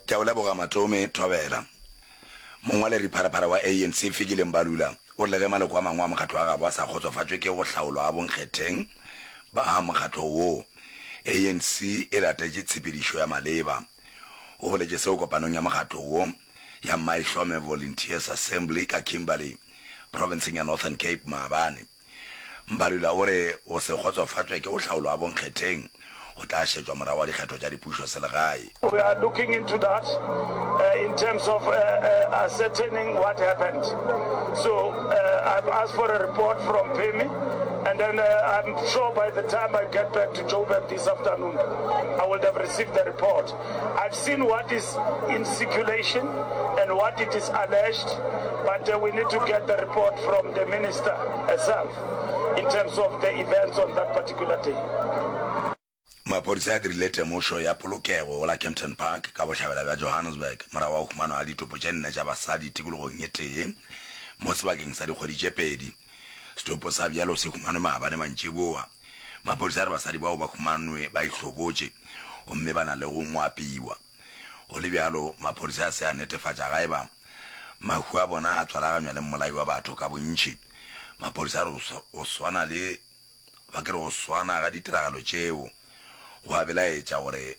Ke a o leboga Matome Thobela. Mongwaleri Pharapara wa ANC Fikile Mbalula o rile ge maloko a mangwe a mokgatlo wa gabo a sa kgotsofatšwe ke go hlaolwa ga bonkgetheng ba mokgatlo woo, ANC e latetše tshepedišo ya maleba. O boletše seo kopanong ya mokgatlo wo ya Maihlome Volunteers Assembly ka Kimberley, profenseng ya Northern Cape, maabane. Mbalula o re go se kgotsofatšwe ke go hlaolwa ga bonkgetheng go tla šetšwa morago ga dikgetho tša dipušo selegae. We are looking into that in terms of ascertaining what happened so I've asked for a report from Phemi and then I'm sure by the time I get back to Joburg this afternoon I would have received the report. I've seen what is in circulation and what it is alleged but we need to get the report from the minister herself in terms of the events on that particular day. Maphodisa a dirile temošo ya polokego go la Kempton Park ka bohlabela bja Johannesburg morago ga go humanwa ga ditopo tše nne tša basadi tikologong e tee mo sebakeng sa dikgwedi tše pedi. Setopo sa bjalo se humanwe maabane mantšiboa. Maphodisa a re basadi bao ba humanwe ba ihlobotše gomme ba na le go ngwapiwa. Go le bjalo, maphodisa a se a netefatša ga e ba mahu a bona a tswalaganywa le mmolai wa batho ka bontši. Maphodisa a re go swana le, goba ke re go swana ga ditiragalo tšeo go a belaetša gore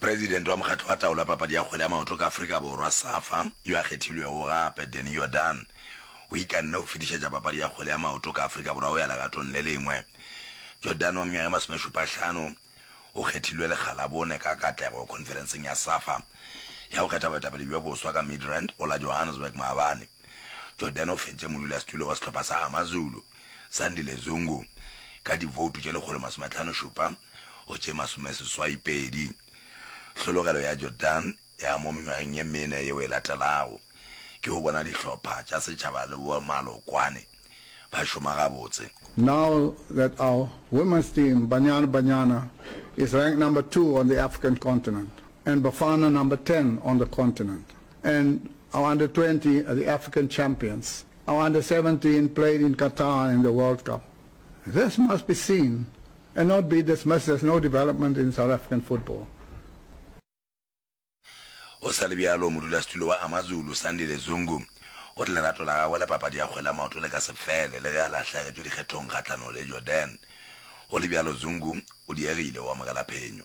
President wa Mokgatlo wa Taolo ya Papadi ya Kgwele ya Maoto ka Afrika Borwa, Safa, yo a kgethilwego gape, Danny Jordaan, o ikanne go fetišetša papadi ya kgwele ya maoto ka Afrika Borwa go ya legatong le lengwe. Jordaan wa mengwaga ye masomešupahlano o kgethilwe lekgalabone ka katlego khonferenseng ya Safa ya go kgetha boetapele bjo boswa ka Midrand go la Johannesburg maabane. Jordaan o fentše modulasetulo wa sehlopha sa AmaZulu, Sandile Zungu, ka divoutu tše lekgolo masome tlhano šupa. go tše masomeseswaipedi, tlhologelo ya Jordan ya mo mengwageng ye mene yeo e latelago, ke go bona dihlopha tša setšhaba le bomalokwane ba šoma gabotse. Now that our women's team, Banyana Banyana, is ranked number two on the African continent and Bafana number ten on the continent and our under twenty are the African champions, our under seventeen played in Qatar in the World Cup, this must be seen and not be dismissed as no development in South African football. Go sa le bjalo, modulasetulo wa AmaZulu, Sandile Zungu, o re lerato la gagwe la papadi ya kgwele ya maoto le ka se fele le ge a lahlegetšwe dikgethong kgahlanong le Jordan. Go le bjalo, Zungu o diegile go amogela phenyo.